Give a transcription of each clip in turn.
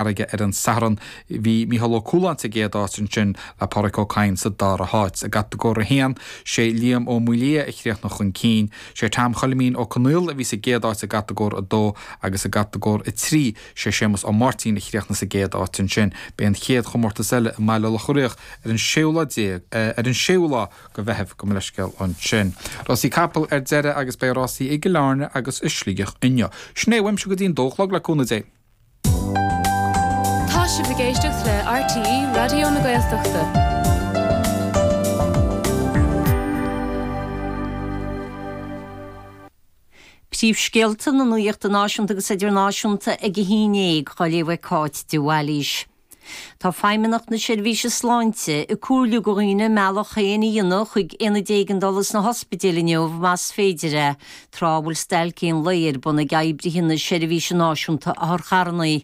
Fharraige ar an Satharn. Bhí Micheál Ó Cualáin sa gcéad áit, ansin le Pádraic Ó Cadhain sa dara háit. I gCatagóir 1, sé Liam Ó Maolaodha a chríochnaigh chun cinn. Sé Tom Choilimín Ó Conaola a bhí sa gcéad áit i gCatagóir 2 agus i gCatagóir 3, sé Séamus Ó Máirtín a chríochnaigh sa gcéad áit ansin. Beidh an chéad chomórtas eile i mBaile Locha Riach ar an séú lá déag, ar an séú lá go Mheitheamh. Gabh mo leithscéal ansin. Rásaí Capall ar deireadh agus beidh rásaí i gCill Airne agus i Sligeach inniu. Sin é uaimse go dtí an dó a chlog, le cúnamh Dé. Tá sibh ag éisteacht le RTÉ Raidió na Gaeltachta. Príomhscéalta na nuaíochta náisiúnta agus idirnáisiúnta ag a 11 dhá léamh ag Cáit de Bhailís. Tá Feidhmeannacht na Seirbhíse Sláinte ag comhairliú go dhaoine a mbealach féin a dhéanamh chuig Aonaid Éigeandála sna hospidéil inniu más féidir é, tráth a bhfuil stailc aon lae ar bun ag oibrithe na Seirbhíse Náisiúnta Otharcharranna.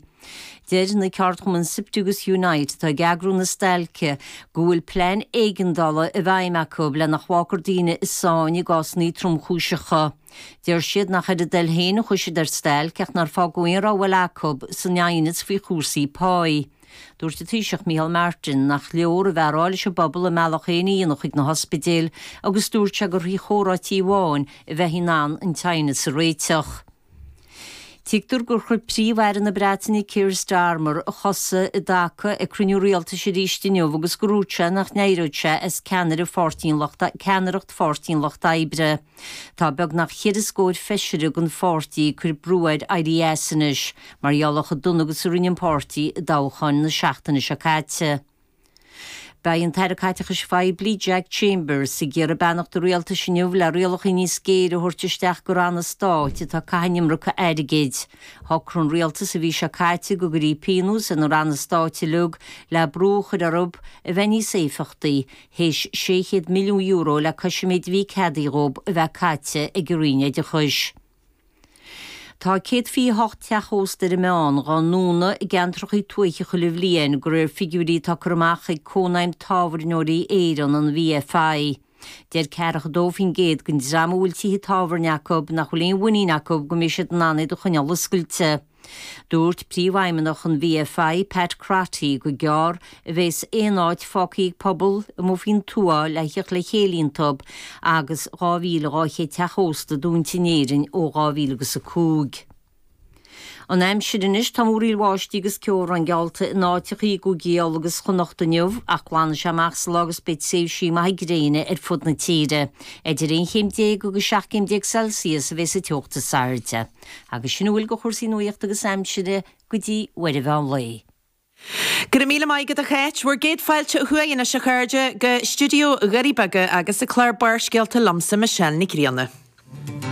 Deir na ceardchumainn Siptu agus Unite, atá ag eagrú na stailce, go bhfuil plean éigeandála i bhfeidhm acu le nach bhfágfar daoine i sáinn i gcásanna tromchúiseacha. Deir siad nach ar a dtoil féin a chuaigh siad ar stailc ach nár fágadh aon rogha eile acu san aighneas faoi chúrsaí páí. Dúirt an Taoiseach Micheál Martin nach leor a bheith á rá leis an bpobal a mbealach féin a dhéanamh chuig na hospidéil agus dúirt sé gur thrí chomhráití amháin a bheith in ann an t-aighneas a réiteach. Tuigtear gur chuir Príomh-Aire na Breataine Keir Starmer a chosa i dtaca ag cruinniú rialtais arís inniu agus gur úirt sé nach n-éireodh sé as ceannaire Pháirtí an Lucht ceannaireacht Pháirtí an Lucht Oibre Tá beagnach ceithre scóir feisire den pháirtí ag cur brú air éirí as anois mar gheall ar chomh dona agus a rinne an páirtí i dtoghcháin na seachtaine seo caite. Beidh an tAire Caiteachais Phoiblí, Jack Chambers, ag iarraidh beannacht an rialtais inniu le rialacha níos géire a thabhairt isteach go ranna stáit atá ag caitheamh an iomarca airgid. Shocraigh an rialtas an mhí seo caite go gcuirfí pionós ar na ranna stáit uilig le brú a chur orthu a bheith níos éifeachtaí. théis €600 milliún le cois an méid a bhí ceadaithe dhób a bheith caite ag an Roinn Oideachais. Tá 128 teach ósta ar an meán dhá ndúnadh i gceantrachaí tuaithe chuile bhliain de réir figiúirí atá curtha amach ag Cónaidhm Tábhairneoirí Éireann, an VFI. Deir ceathracha dó faoin gcéad den dream a bhfuil tithe tábhairne acu nach bhfuil aon mhuinín acu go mbeidh siad in ann iad a choinneáil oscailte. Dúirt Príomhfheidhmeannach an VFI, Pat Crotty, gur gearr a bhéas aon áit fágtha ag pobal amuigh faoin tuath le theacht le chéile iontub agus 2,200 teach ósta dúinte in Éirinn ó 2000 agus 5. An aimsir anois, tá múraíl bháistí agus ceobhrán geallta in áiteachaí i gCúigí Uladh agus Chonnacht inniu ach glanfaidh sé amach sa lá agus beidh tréimhsí maithe gréine ar fud na tíre. Idir 11 chéim agus 17 céim Celsius a bhéas an teocht is airde. agus sin a bhfuil de chúrsaí nuachta agus aimsire go dtí nuacht an mheán lae. Go raibh míle maith agat a Cháit. Bhur gcéad fáilte chughainn anois a chairde go stiúideo Dhoirí Beaga agus chuig clár Barrscéalta liomsa, Michelle Nic Grianna.